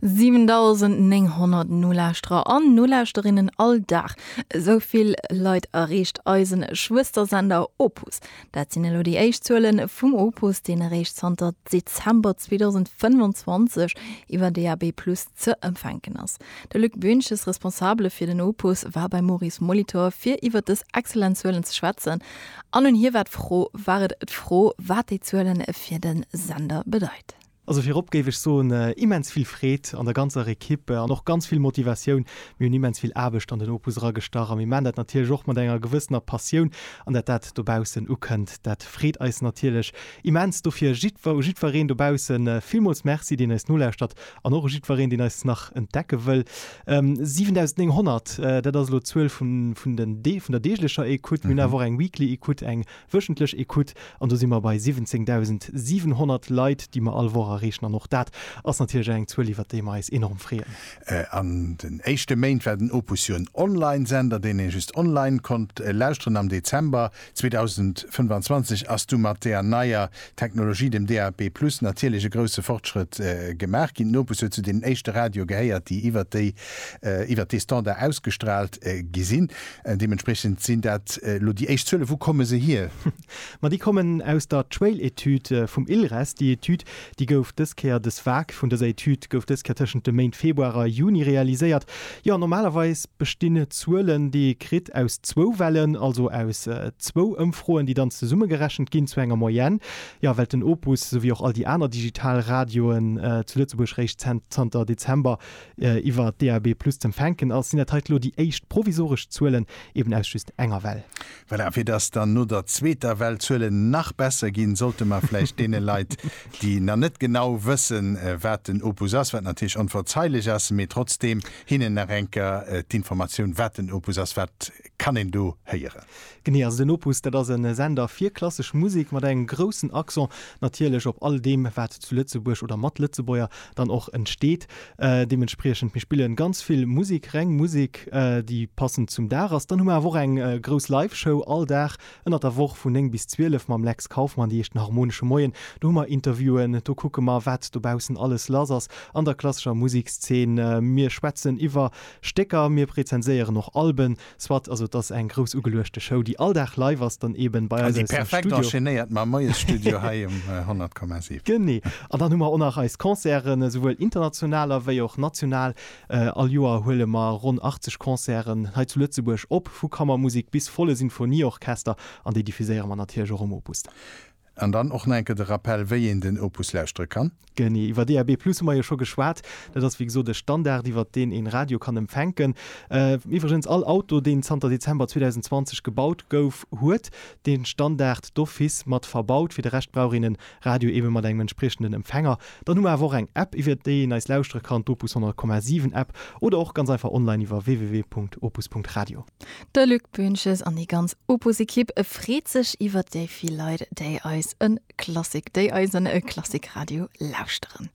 7.900 Nolauschterer an Nolauschterinnen all Dag, esou vill Leit erreecht eise Schwëstersender Opus. Dat sinn elo déi éischt Zuele vum Opus, deen eréischt zanter Dezember 2025 iwwer DAB+ ze empfänken ass. De Luc Boentges, Responsabele fir den Opus, war beim Maurice Molitor, fir iwwer dës exzellent Zuelen ze schwätzen. An un hie war d'Fro, war et d'Fro, wat déi Zuele fir de Sender bedeit. Also virop géif ech soen, immens vill Freed an der ganzer Equipe an och ganz vill Motivatioun. Mir hunn immens vill Aarbecht an den Opus eragestach a mir maachen dat natierlech och mat enger gewëssener Passioun. An dat dat dobaussen ukënnt, dat freet eis natierlech immens. Dofir jiddwer u jiddwereen dobausse villmools Merci, deen eis nolauschtert An och u jiddwereen, deen eis nach entdecke wëll. 7.900, dat ass elo d'Zuel vun den Dee, vun der deeglecher Écoute. Mir hunn awer och eng Weekly Écoute, eng wöchentlech Écoute. An do si mer bei 17.700 Leit, déi mer all Woch erreechen. An och dat ass natierlech eng Zuel, iwwert déi mer eis enorm freeën. An den éischte Méint war den Opus jo en Online-Sender, deen ee just online konnt lauschteren. Am Dezember 2025 ass du mat där neier Technologie, dem DAB+ natierlech e grousse Fortschrëtt gemaach ginn. D'Nopes huet zu deenen éischte Radioe gehéiert, déi iwwert déi iwwert dee Standard ausgestraalt gi sinn. Deementspriechend sinn dat elo déi éischt Zuelen. Wou komme se hier? Ma déi kommen aus der Trail-Etüd vum ILRES. Déi Etüd Déi gouf dës Kéier, dës Vag vun dëser Etüd gouf dës Kéier tëschent de Méint Februar a Juni realiséiert. Jo, normalerweis bestinn d'Zuelen, déi ee kritt, aus zwou Wellen, also aus zwou Ëmfroen, déi dann zesummegerechent ginn zu enger Moyenne. Jo, well den Opus, esou wéi och all déi aner digital Radioen zu Lëtzebuerg, réischt zanter Dezember iwwer DAB+ z'empfänken ass, sinn dat hei elo déi éischt provisoresch Zuelen, eben aus just enger Well. Voilà, fir dass dann no der zweeter Well d'Zuelen nach besser ginn, sollte mer vläicht deene Leit, déi nach net genau wëssen, wat den Opus ass, wat natierlech onverzeilech ass, mee trotzdeem hinnen nach eng Kéier d'Informatioun, wat den Opus ass, wat kann een do héieren? Genee, also den Opus, dat ass e Sender fir klassesch Musek mat engem groussen Accent natierlech op all deem, wat zu Lëtzebuerg oder mat Lëtzebuerger dann och entsteet. Deementspriechend, mir spillen ganz vill Musik, reng Musik, déi passend zum Dag ass. Dann hu mer awer och eng grouss Live-Show all Dag ënnert der Woch vun 9 bis 12 mam Lex Kauffmann, déi heescht den Harmonesche Moien. Do hu mer Interviewen, do kucke mer, wat dobaussen alles lass ass an der klassescher Musekszeen. Mir schwätzen iwwer Stécker, mir rezenséieren och Alben. Soit, also et ass eng grouss ugeluechte Show, déi all Dag live ass, dann eben bei eis aus dem Studio. An déi perfekt enchaînéiert mam Moiesstudio hei um 100,7. Genee. An dann hu mer och nach eis Concerten, esouwuel international ewéi och national. All Joer huele mer ronn 80 Concerten hei zu Lëtzebuerg op, vu Kammermusek bis volle Sinfonieorchester, an déi diffuséiere mer natierlech och um Opus dann. An dann och nach eng Kéier de Rappell, wéi een den Opus lauschtere kann. Genee, iwwer DAB+ hu mer jo scho geschwat. Dat ass wéi gesot e Standard, iwwer deen een Radio kann empfänken. Iwwregens, all Auto, deen zanter Dezember 2020 gebaut gouf, huet dee Standard d'office mat verbaut. Fir de Rescht brauch een e Radio eebe mat engem entspriechenden Empfänger. Dann hu mer awer och eng App, iwwer déi een eis lauschtere kann, d'Opus 100,7 App, oder och ganz einfach online iwwer www.opus.radio. De Luc Boentges an déi ganz Opus-Ekipp freet sech iwwert déi vill Leit, déi eis en Klassik, déi eisen Klassikradio lauschteren.